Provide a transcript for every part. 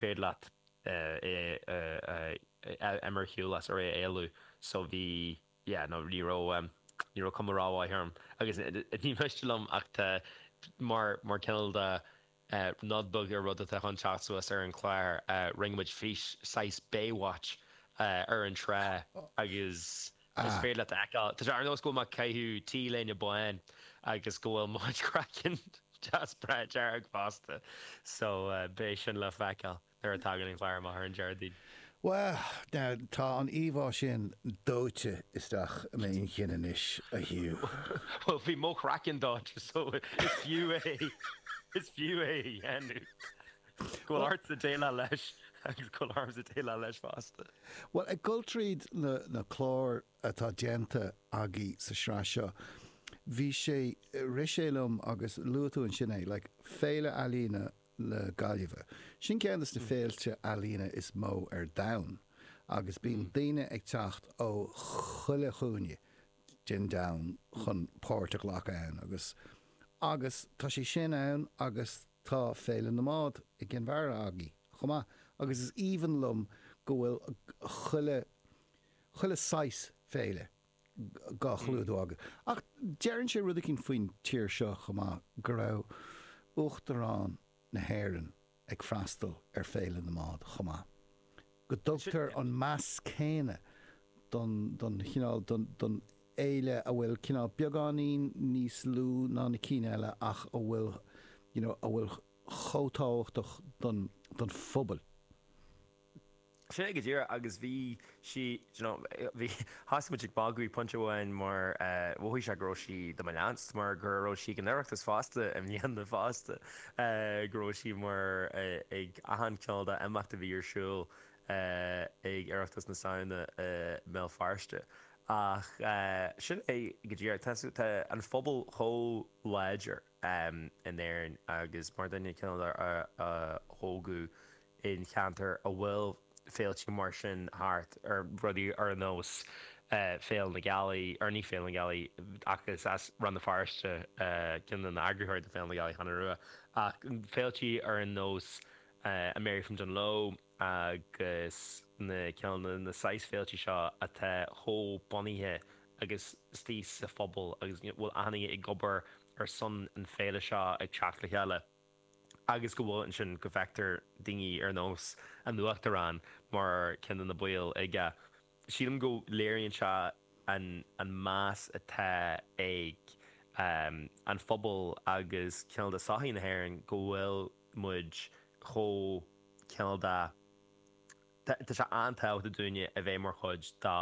b'fhéidir leat é a mharcáil as ar é a éalú so bhí yeah no ní raibh ní raibh cuma rómhaith orm agus ní miste liom ach tá mar mar cineál nod beag ar rud atá chun teacht suas ar an clár rinne muid fís saghas Baywatch ar an trá agus Is féidir leat a fheiceáil, ar ndóigh, go bhfuil mé ag caitheamh T-léine bán agus go bhfuil mo chraiceann deas breá dearg fosta, so beidh sin le feiceáil nuair a thagann an clár amach ar an Déardaoin. Bhuel, now, tá an íomhá sin dóite isteach i m'inchinn anois, a Hugh. Bhuel, bhí mo chraiceann dóite, so is fiú é, is fiú é a dhéanamh! Go bhfuil ort a déileáil leis agus go bhfuil ormsa déileáil leis fosta. Bhuel, ag dul tríd na cláir atá déanta againn sa tsraith seo, bhí sé, rith sé liom agus luaigh tú ansin é, like, Féile Ealaíne na Gaillimhe. Sin ceann de na féilte ealaíne is mó ar domhan agus bíonn daoine ag teacht ó chuile chúinne den domhan chun páirt a ghlacadh ann agus, agus tá sé sin ann agus, Tá Féile na mBád i gCinn Mhara againn chomh maith agus is aoibhinn liom go bhfuil chuile, chuile shaghas féile dhá chlúdú againn. Ach deireann sé rud eicínt faoin tír seo chomh maith, go raibh Uachtarán na hÉireann ag freastal ar Féile na mBád chomh maith. go dtugtar an meas céanna don chineál, don fhéile a bhfuil cineál beagáinín níos lú ná na cinn eile ach a bhfuil you know a bhfuil chomh tábhachtach don don phobail. Sin é go díreach agus bhí sí d'you know bhí thosaigh muid ag magadh ag pointe amháin mar mhothaigh sé go raibh sí do mo leanstan mar go raibh sí ag an Oireachtas fosta i mbliana fosta go raibh sí mar ag achan cineál imeacht a bhí ar siúl ag Oireachtas na Samhna i mBéal Feirste ach sin é go díreach tá tá an phobal chomh láidir in Éirinn agus mar duine cineál a tógadh i gceantar a bhfuil féilte mar sin thart, rudaí ar nós Féile na Gealaí, or ní Féile na Gealaí, ach is as Rann na Feirste ceann de na eagraítheoirí do Féile na Gealaí Cheann Rua, ach féiltí ar nós an Mary from Dunloe agus na cineál na saghas féiltí seo atá chomh bunaithe agus istigh sa phobal agus bhfuil achan nduine ag obair ar son an Féile seo ag teacht le chéile. agus go bhfuil ansin go bhfeictear duine ar nós an uachtarán mar ceann de na baill aige. Sílim go léiríonn sé an an meas atá ag an phobal agus cineál de sochaí na hÉireann go bhfuil muid chomh cineál de Tá sé an-tábhachtach dúinne a bheith mar chuid de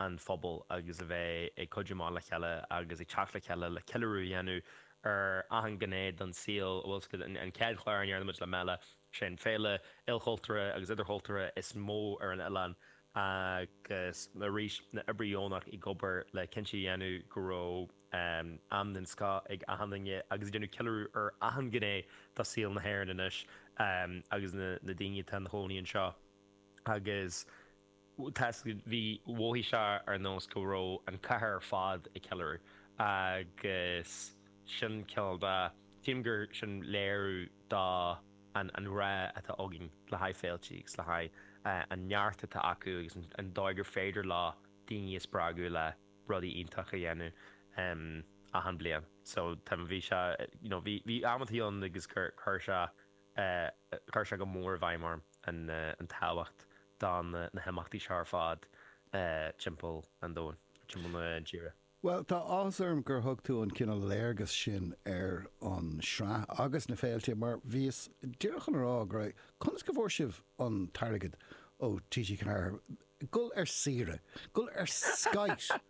an phobal agus a bheith ag cuidiú amach le chéile agus ag teacht le chéile le ceiliúradh a dhéanamh ar achan gné don saol a bhfuil sa An chéad chlár a ndearna muid le Mela, sé an féile ilchultúrtha agus idirchultúrtha is mó ar an oileán agus arís na oibrithe deonacha ag obair le cinntiú a dhéanamh go raibh Am den scoth ag achan duine agus ag déanamh ceiliúradh ar achan ghné de saol na hÉireann anois agus na daoine atá ina gcónaí anseo. Agus bhí, mhothaigh sé ar nós go raibh an chathair ar fad ag ceiliúradh agus sin cineál de, chím gur sin léiriú de an ghrá atá againn le haghaidh féiltí agus le haghaidh an neart atá acu agus an dóigh gur féidir leo daoine a spreagadh le rudaí iontach a dhéanamh achan bliain so tá bhí sé you know bhí bhí amanntaí ann agus cur cur sé cur sé go mór i bhfeidhm orm an an tábhacht de na himeachtaí seo ar fad timpeall an domhain timpeall na tíre. Bhuel tá áthas orm gur thug tú an cineál léargas sin ar an sraith agus na féilte mar bhíos díreach chun a rá go raibh conas go bhfuair sibh an t-airgead ó TG4 Gabháil ar saoire! Gabháil ar skite!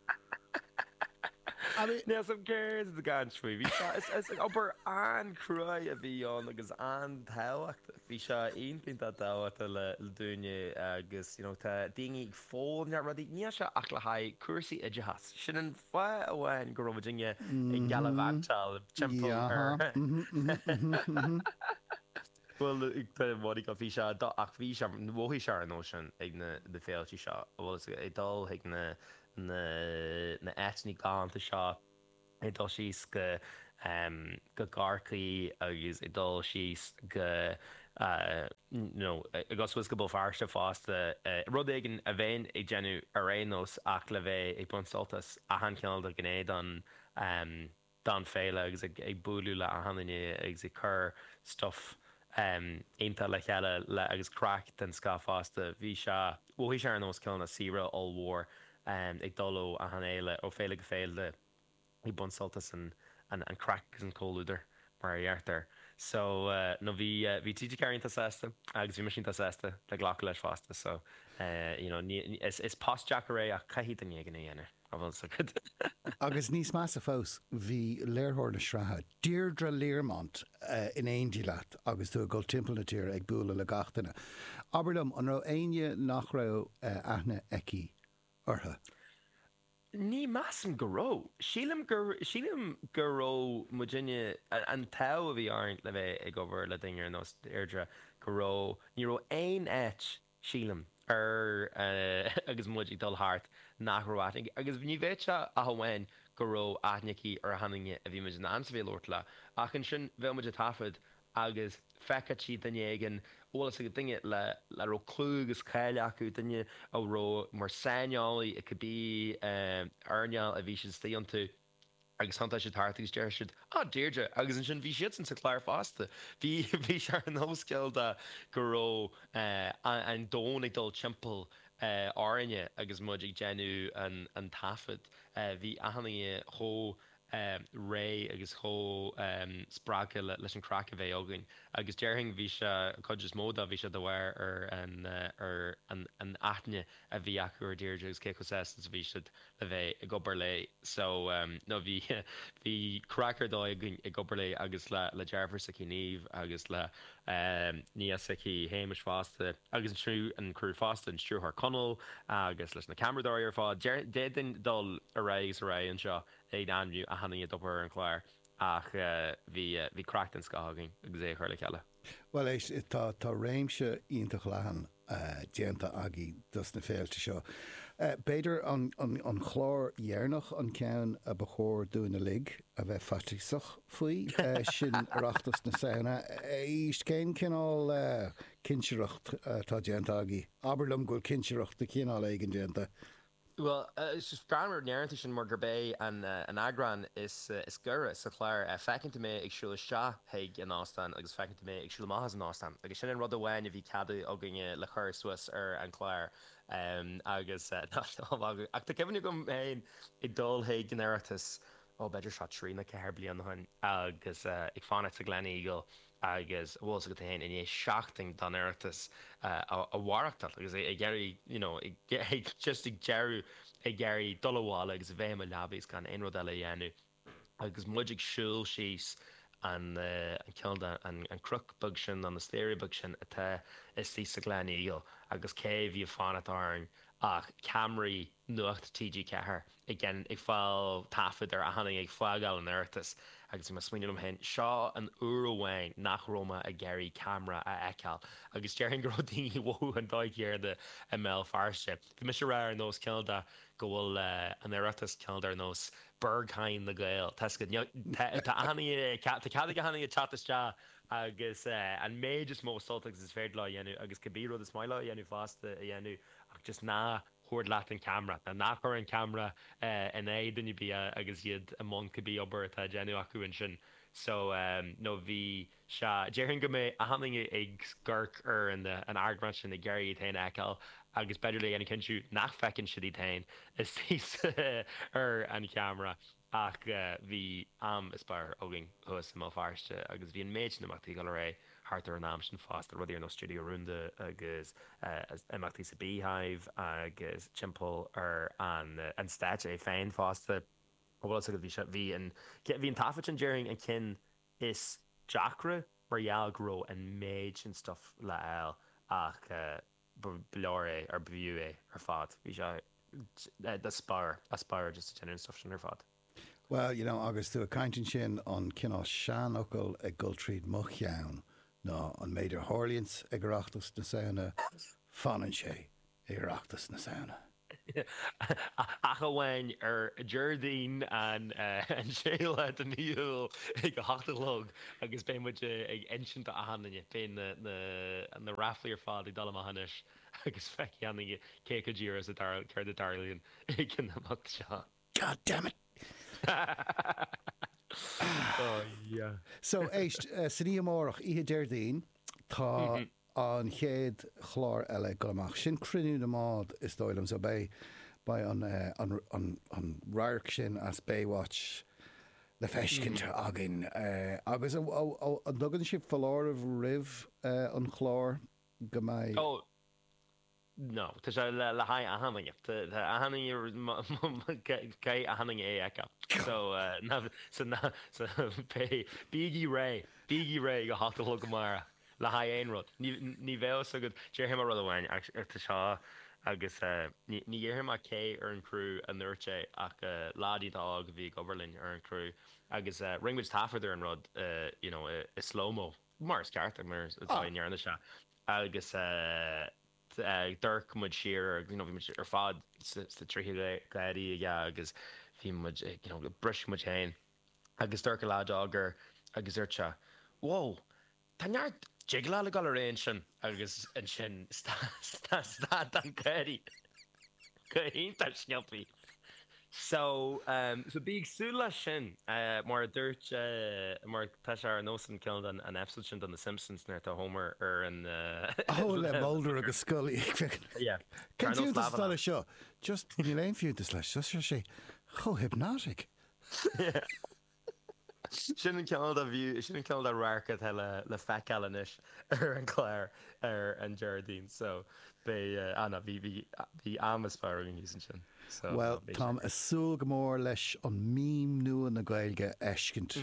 An é? Níl suim céard a gcaint faoi. Bhí sé, is obair an-chruaidh a bhí ann agus an-tábhachtach. Bhí sé iontach tábhachtach le déanamh agus you know tá daoine ag foghlaim rudaí. Níl sé ach le haghaidh cúrsaí oideachais. Sin an fáth amháin go raibh duine ag gallivantáil timpeall ar. Bhuel, creidim Mhonique an fís seo do ach bhí sé, mhothaigh sé ar nós sin ag na na féilte seo a bhfuil fhios ag dul chuig na na na áiteanna galánta seo ag dul síos go go Corcaigh agus ag dul síos go you know agus bhuel go Béal Feirste fosta rud éigin a bheinn ag déanamh ar aon nós ach le bheith ag baint sult as achan chineál de ghné don don fhéile agus ag buaileadh le achan nduine agus ag cur stuff iontach le chéile le agus craic den scoth fosta. Bhí sé, mhothaigh sé ar nós cineál na saoire ollmhór ag dul ó achan fhéile, ó féile go féile ag baint sult as an an craic agus an comhluadar mar a dheirtear. So no bhí bhí TG Ceathair iontach sásta agus bhí mise iontach sásta le glacadh leis fosta so you know ní is is post deacair é ach caithfidh duine éigin é a dhéanamh. An bhfuil 's agat? Agus níos measa fós, bhí léirtheoir na sraithe, Deirdre Learmont, in éindí leat agus tú ag dul timpeall na tíre ag bualadh le gach duine. Abair liom, an raibh éinne nach raibh aithne aici orthu? Ní mheasaim go raibh. Sílim gur, sílim go raibh muidinne, an t-ádh a bhí orainn le bheith ag obair le duine ar nós Dheirdre, go raibh, ní raibh aon áit Sílim, eh agus muid ag dul thart, nach raibh aithne aici, agus ní bheadh ach amháin go raibh aithne aici ar achan duine a bhí muid in ann's a bheith ag labhairt leo, ach ansin bheadh muid ag taifead agus d'fheicfeadh sí duine éigin an bhfuil fhios agat, duine le, a raibh clú agus cáil acu, duine a bhí mar saineolaí i cibé earnáil a bhí siad istoigh iontu. Agus thiontódh siad thart agus déarfadh siad, Ah Deirdre! Agus ansin bhí siadsan sa chlár fosta. Bhí, bhí sé ar nós cineál de go raibh eh an domhan ag dul timpeall eh orainne agus muid ag déanamh an an taifead. Eh bhí achan duine chomh eh réidh agus chomh eh spreagtha le leis an craic a bheith againn. Agus déarfainn bhí sé, an chuid is mó de, bhí sé de bharr ar an eh ar an an aithne a bhí acu ar Deirdre agus cé chomh sásta is a bhí siad a bheith ag obair léi so no bhí bhí craic ar dóigh againn ag obair léi agus le le deirfiúr s'aici Niamh agus le nia s'aici Shéamais fosta agus an criú an criú fosta an stiúrthóir Conall agus leis na ceamaradóirí ar fad d'fhéadfainn dul ar aghaidh is ar aghaidh anseo ag ainmniú achan duine ag obair ar an chlár ach bhí bhí craic den scoth againn agus é a chur le chéile. Bhuel éist, tá, tá réimse iontach leathan déanta agaibh dos na féilte seo. B'fhéidir an, an, an chlár deireanach an ceann a ba chóir dúinn uilig a bheith faitíosach faoi, sin Oireachtas na Samhna. Éist, cén cineál cinsireacht atá déanta agaibh? Abair liom go bhfuil cinsireacht de chineál éigin déanta Bhuel, déarfainn go ndéarfaí sin mar gurb é an eagrán is giorra sa chlár, feiceann tú mé ag siúl isteach chuig an óstán agus feiceann tú mé ag siúl amach as an óstán agus sin an rud amháin a bhí ceadaithe againne le cur suas ar an chlár agus ach tá cuimhne agam féin ag dul chuig an Oireachtas, ó b'fhéidir seo trí nó ceathair de bhlianta ó shin, agus ag fanacht sa Gleneagle agus an bhfuil 's agat féin i ndiaidh seachtain den Oireachtas a mhaireachtáil agus ag iarraidh you know ag just ag deireadh ag iarraidh dul abhaile agus a bheith i mo leaba agus gan aon rud eile a dhéanamh agus muid ag siúl síos an an cineál de an an cnoc beag sin nó na staighrí beaga sin atá istigh sa Gleneagle agus cé a bhí ag fanacht orainn ach ceamaraí nuachta TG4 ag déanamh, ag fáil taifead ar achan duine ag fágáil an Oireachtas agus bhí mé ag smaoineamh liom féin, seo an uair amháin nach raibh mé ag iarraidh ceamara a fheiceáil agus déarfainn go raibh daoine ag mothú an dóigh chéanna i mBéal Feirste. Bhí mise ag rá ar nós cineál de go bhfuil an Oireachtas cineál de ar nós Berghain na nGael, tá a fhios agat tá tá achan tá cead ag achan duine teacht isteach agus an méid is mó sult agus is féidir leo a dhéanamh agus cibé rud is maith leo a dhéanamh fosta a dhéanamh ach just ná tabhair leat an ceamra, ná ná cuir an ceamra in aghaidh duine ar bith agus iad i mbun cibé obair atá á déanamh acu ansin so no bhí sé déarfainn go mbeidh achan duine ag amharc ar an eagrán sin ag iarraidh iad féin a fheiceáil agus b'fhéidir le déanamh cinntiú nach bhfeiceann siad iad féin is thíos ar an cheamra. Ach bhí am superb againn thuas i mBéal Feirste agus bhí an méid sin imeachtaí ag dul ar aghaidh thart ar an am sin fosta, rudaí ar nós Studio Rúnda agus imeachtaí sa Beehive agus timpeall ar an stáitse é féin fosta. An bhfuil fhios agat, bhí sé, bhí an, bhí an taifead sin déarfainn an ceann is deacra mar gheall go raibh an méid sin stuff le fháil ach eh, ba leor é, ar b'fhiú é ar fad. Bhí sé superb, superb just ag déanamh an stuif sin ar fad. Bhuel, you know, agus tú ag caint ansin, an cineál seanfhocal ag dul tríd mo cheann ná an méid a tharlaíonns ag Oireachtas na Samhna, fanann sé ag Oireachtas na Samhna. ach amháin ar Déardaoin an 6 lá de mhí Iúil ag a hocht a chlog agus beidh muid ag insint do achan duine beidh na na ráflaí ar fad ag dul amach anois agus feicfidh achan duine cé acu díreach is a dar céard a dtarlaíonn ag an imeacht seo. God damn it! Ah! Oh yeah. So, éist, san oíche amárach, oíche Déardaoin, tá an chéad chlár eile ag dul amach. Sin Cruinniú na mBád is dóigh liom so beidh beidh an an an radharc sin as Baywatch le feiscint againn agus an an dtugann sibh foláireamh roimh an chlár go mbeidh. No, tá sé le haghaidh achan duine. OK, achan duine, OK. So, ná, so, ná, so, pé, bígí réidh, bígí réidh ag a hocht a chlog amárach le haghaidh aon rud. Ní, ní bheadh a fhios agat, déarfaidh mé rud amháin ach tá sé, agus ní, ní dhéarfaidh mé cé ar an chrú a dúirt é ach lad iontach óg a bhí ag obair linn ar an chrú agus rinne muid taifead ar an rud, you know, i slow-mo. mar is ceart, mar is dóigh a ndearna sé, agus d'amharc muid siar air, you know, bhí muid ar fad sna tríthí gáirí aige agus bhí muid ag, you know, briseadh muid féin agus d'amharc an lad óg air, agus dúirt sé, wow, tá neart jiggle ag dul ar aghaidh ansin agus ansin stad an gáirí go hiontach sciobtha. So, so bí ag súil leis sin. Mar a dúirt, mar tá sé ar nós an clip den episode sin den The Simpsons nuair tá Homer ar an, ó, le Mulder agus Scully ag féachaint. Yeah. Cén fiúntas atá leis seo? Just níl aon fiúntas leis seo, ach tá sé chomh hypnotic. Sin ceann de na view, sin ceann de na radhairc atá le feiceáil anois ar an gclár ar an Déardaoin so beidh, ah ní, bhí, bhí, bhí an-spraoi againn thíos ansin so beidh sé Bhuel, táim ag súil go mór leis an meme nua na Gaeilge a fheiscint.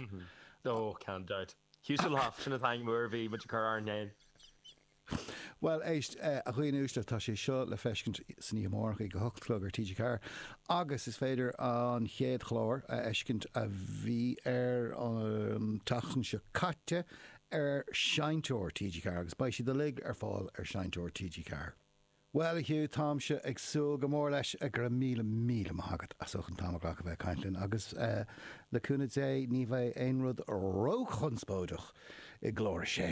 Oh, gan dabht. Huselhoff, sin atá agam nuair a bhí muid ag cur ár n-aon. Bhuel, éist, a dhaoine uaisle, tá sé seo le feiscint istoíche amárach ag a hocht a chlog ar TG4, agus is féidir an chéad chlár a fheiscint a bhí ar an tseachtain seo caite ar Seinnteoir TG4, agus beidh siad uilig ar fáil ar Seinnteoir TG4. Bhuel, a Hugh, táimse ag súil go mór leis, go raibh míle míle maith agat as ucht an t-am a ghlacadh bheith ag caint linn, agus le cúnamh Dé ní bheidh aon rud ró-chonspóideach i gclár a sé.